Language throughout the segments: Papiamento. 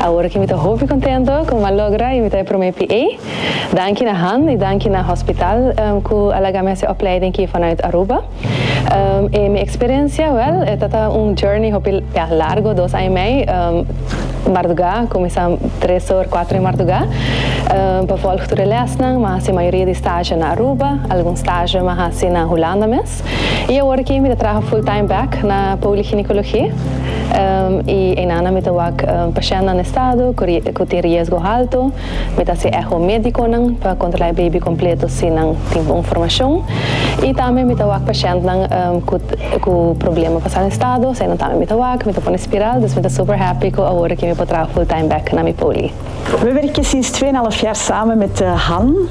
Awor ki mi ta hopi contento cu mi a logra y mi ta e prome PA. Danki na Han y danki na Hospital cu a laga mi haci e opleiding ki vanuit Aruba. E mi experiencia, wel, e ta ta un journey hopi ya largo, dos aña y mei marduga, cuminsa tres or cuatro di marduga, pa volg tur e lesnan. Mi a haci mayoria di stage na Aruba, algun stage mi a haci na Hulanda mes. Gonzalez. I awor aki mi ta traha full time back na poliginekologi i einanan mi ta wak pashèntnan na estado ku tin riesgo halto. Mi ta hasi eho médikonan pa kontrolá e beibi kompleto si nan tin bon formashon. I tambe mi ta wak pashèntnan ku problema pa sa estado, eseinan tambe mi ta wak, mi ta pone spiral. Dus mi ta super happy ku awor aki mi por traha full time back na mi poli. Mi werk e sinstfé na Lafyar samen met Han.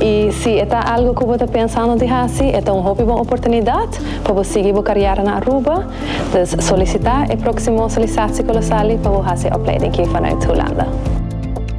I si e ta algu ku bo ta pensando di hasi, e ta un hopi bon oportunidat pa bo sigui bo karièra na Aruba. Dus solisitá e próksimo Solisatiekolosali pa bo hasi e opleiding aki vanuit Hulanda.